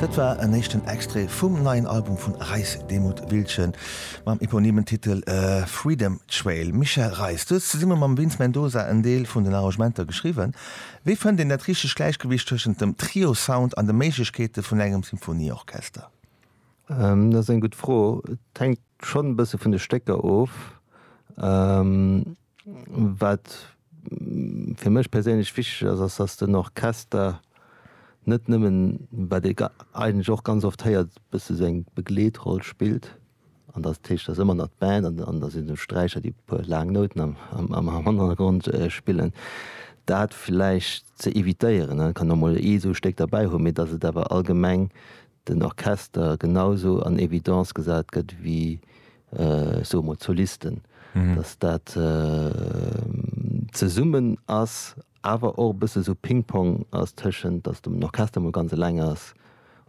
Dat war en éischten Extrait vum neien Album vu Reis Demuth Wiltgen mam eponymen Titel Freedom Trail. Michel Reis, du hues zesumme mam Vince Mendoza en Deel vun den Arrangementer geschriwwen. Wéi fënnt een dat richtegt Gläichgewicht tëschent dem Trio-Sound an de Méiglechkeete vun engem Symphonieorchester? Dat ass eng gutt Fro. Et hänkt schonn e bësse vun de Stécker of. Wat fir mech perséinlech wichteg ass, ass dass den Orchester net nëmmen, wat ee eigentlech och ganz oft héiert, e bësse sou eng Begleetroll spillt an dass dat heescht, dass ëmmer nach d'Band an da sinn et d'Sträicher déi e puer laang Nouten am Hannergrond spillen, dat vläicht ze evitéieren. Et kann och mol ee sou e Stéck derbäi hunn, mee dass et awer allgemeng den Orchester genau sou an Evidence gesat gëtt wéi, ech soe mol, d'Solisten, dass dat zesummen ass, awer och e bësse sou Ping-Pong ass tëschent, dass den Orchester mol ganz eleng ass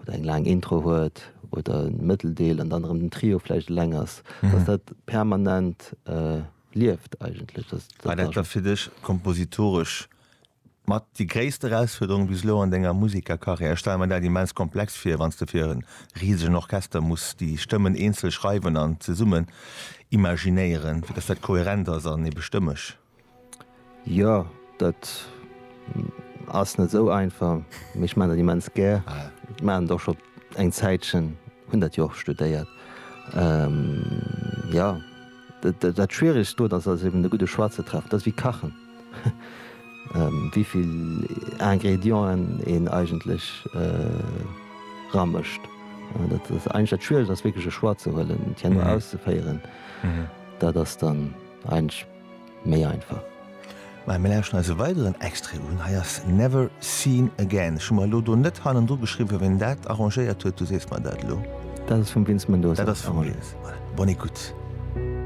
oder eng laang Intro huet oder e Mëtteldeel an dann erëm den Trio vläicht eleng ass, dass dat permanent lieft eigentlech. War dat da fir dech kompositoresch? Mat déi gréisst Erausfuerderung bis elo an denger Musekerkarriär? Ech stelle mer dat immens komplex vir, wann s de fir e risegen Orchester muss déi Stëmmen eenzel schreiwen an zesummen imaginéieren, fir datt dat kohärent ass an ebe stëmmeg. Jo, dat ass net esou einfach, mee ech maachen dat immens gär. Ech maachen dat och scho eng Zäitchen, hunn dat jo och studéiert. Jo, dat Schwieregst do, dat ass eben de gudde Choix ze treffen, dat ass ewéi kachen. wéivill Ingredienten een eigentlech ramëscht. Dat ass eigentlech dat Schwieregt, ass wierklech e Choix ze huelen, et herno auszeféieren. Dat ass dann eigentlech méi einfach. Mä mir lauschteren eis e weideren Extrait un. Hei ass Never Seen Again. Ech hu mer elo do net hannendru geschriwwen, wien dat arrangéiert huet. Du sees mer dat elo. Dat ass vum Vince Mendoza. Dat ass vum Vince. Voilà, bonne écoute.